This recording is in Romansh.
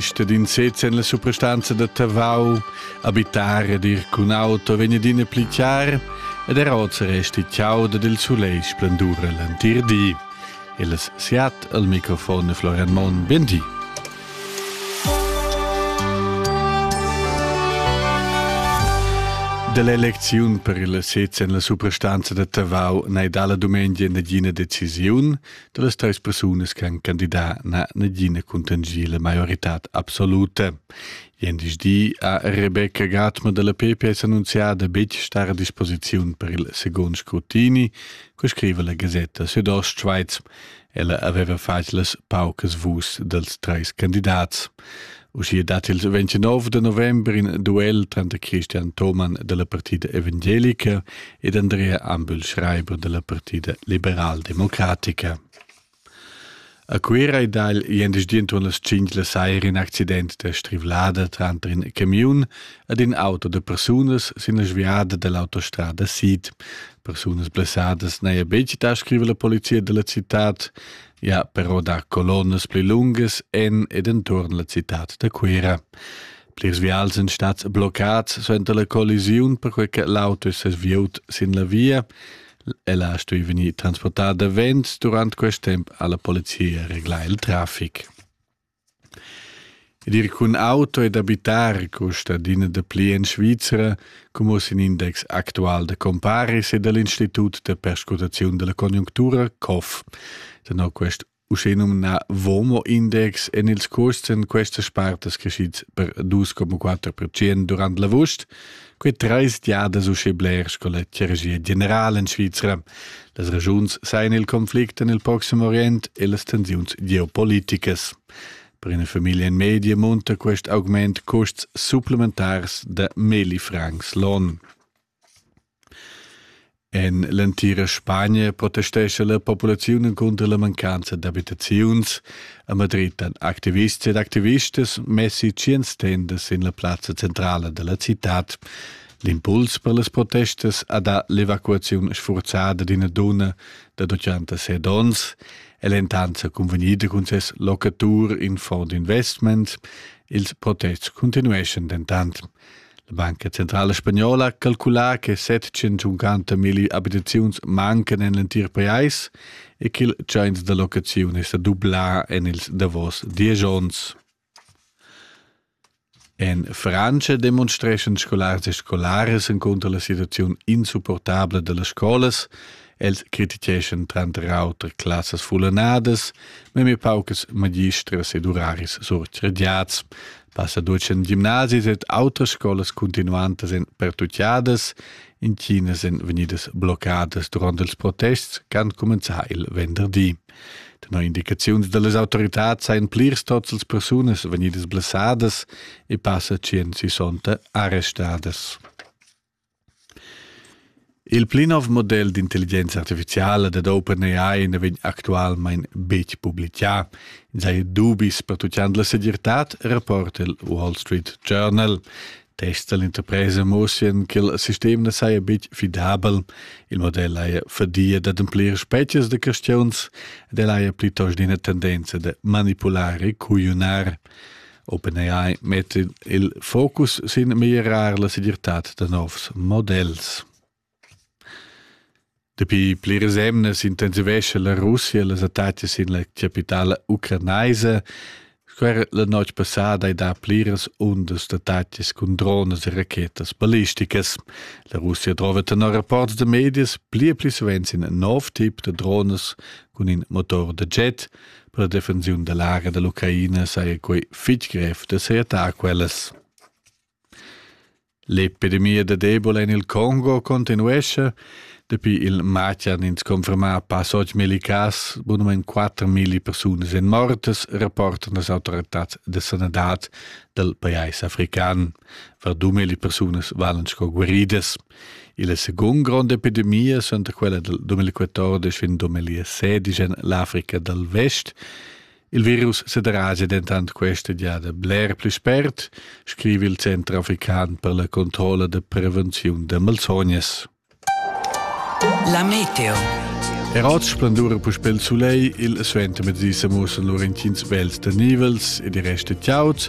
stat in sez en la suprastanza da Tavau, abitar ed ir cun auto vegn adina pli chiar ed er oz resti chiauda dil sulegl splendur l'entir di. Il siat al microfon Florian Mon, ben di. Dell'elezione per il sez en la suprastanza da Tavau n'è dalla dumengia nagina decisiun, da las teis persunas che han candidà na nagina cuntangiela maioritad absoluta. Jendischdi ha Rebecca Gatma della PPS annunziada betg star a disposiziun per il second scrutini, co scrive la Gazzetta Südostschweiz. Ella aveva fatg las paucas vus dels treis candidats. Uschia dat il 29 de november in duel tranter Christian Thomann della Partida Evangelica ed Andrea Ambül Schreiber della Partida Liberaldemocratica. A Cuira è dal jendeschdi intorno las 5 la saira in accident da strivlada tranter in camion ed in auto de persunas sin la sviada dell'autostrada Sid. Persunas blessadas n'haja betg da scriver la polizia della città. Ja, però dar colonnas pli lungas en ed enturn la citad da Cuira. Plirs vials sind stats bloccats suenter la collisiun, perquai che l'auto è sviut sin la via. Ella ha stuì vegnir transportada davent durant quest temp alla polizia reglà il traffic. Ed ir cun auto ed abitar custa adina dapli en Svizra, como sin index actual da comparis e dal Institut da perscrutaziun dalla conjunctura COF. Tenor quest uschenumnà WOMO-index èn ils custs en questas spartas creschids per 2,4% durant l'avust Quei treis giadas uschè bler sco la clergia general en Svizra. Las ragiuns sajan il conflict en il Proxim Orient e las tensiuns geopoliticas. Per una famiglia in media munta quest augment custs supplementars da meli francs l'on. En l'entira Spagna protestescha la populaziun encunter la mancanza d'abitaziuns. A Madrid han activists ed activistas messi tschient stendas sin la plazza centrala della cittad. L'impuls per las protestas ha dà l'evacuaziun sfurzada d'ina donna da 86 onns. El è intanto convegnida cun ses locatur in fond investment. Ils protests continueschan dentant. La Banca Centrala Spagnola calcula che 750 milli abitaziuns mancan en l'entir pajais e ch'il tschains da locaziun è sa dublà en ils davos diesch onns. En Frantscha demonstreschan scolars e scolaras encunter la situaziun insupportabla da las scolas. Els criticheschan tranter auter classas fullanadas, memia paucas magistras ed uraris surcrediads, Passa duas en gimnasis ed autras scolas continuantas en pertutgadas, intginas en vegnidas bloccadas durant ils protests qu'han cumenzà il venderdi. Tenor indicaziuns da las autoritads sajan plirs tots las persunas vegnidas blessadas e passa tschient sissonta arrestadas. Il pli nov model d'intelligenza artificiala dad OpenAI na vegn actualmain betg publitgà. Ins haja dubis pertutgant la segirtad, rapporta il Wall Street Journal. Tests da l'interpresa mussian ch'il sistem na saja betg fidabel. Il model haja fadia d'ademplir spezias da questiuns ed el haja plitost ina tendenza da manipular e cugliunar. OpenAI metta il focus sin mirar la segirtad da novs models. Dapi pliras emnas intensivescha la Russia les attacchi sin la capitala ucranaisa. Squera la notg passada hai dà pliras undas d'attacchis cun drones e rachetas ballisticas. La Russia trova tenor rapports da medias pli e pli savens in nov tip da drones cun in motor da jet, Per la defensiun da lager dall'Ucraina saja quei fitg grev da seattar quellas. L'epidemia da Ebola en il Congo continuesce. Dapi il matg han ins confermà pas oč milli cas, bunament 4.000 persunas en mortes, rapportan las autoritads de sanadad dal pajais african. Var 2.000 persunas valen sco guaridas. Illa seguond gronda epidemia suenter quella del 2014 fin 2016 en l'Africa dal Vest Il virus sederaja dentant questa giada bler pli spert, scrive il Center african per la controlla da prevenziun da malsognas. La meteo. Er oz splendura puspel sulei, il suentermezdi se mussen lur intgins bels da nivels e di reste tiauts,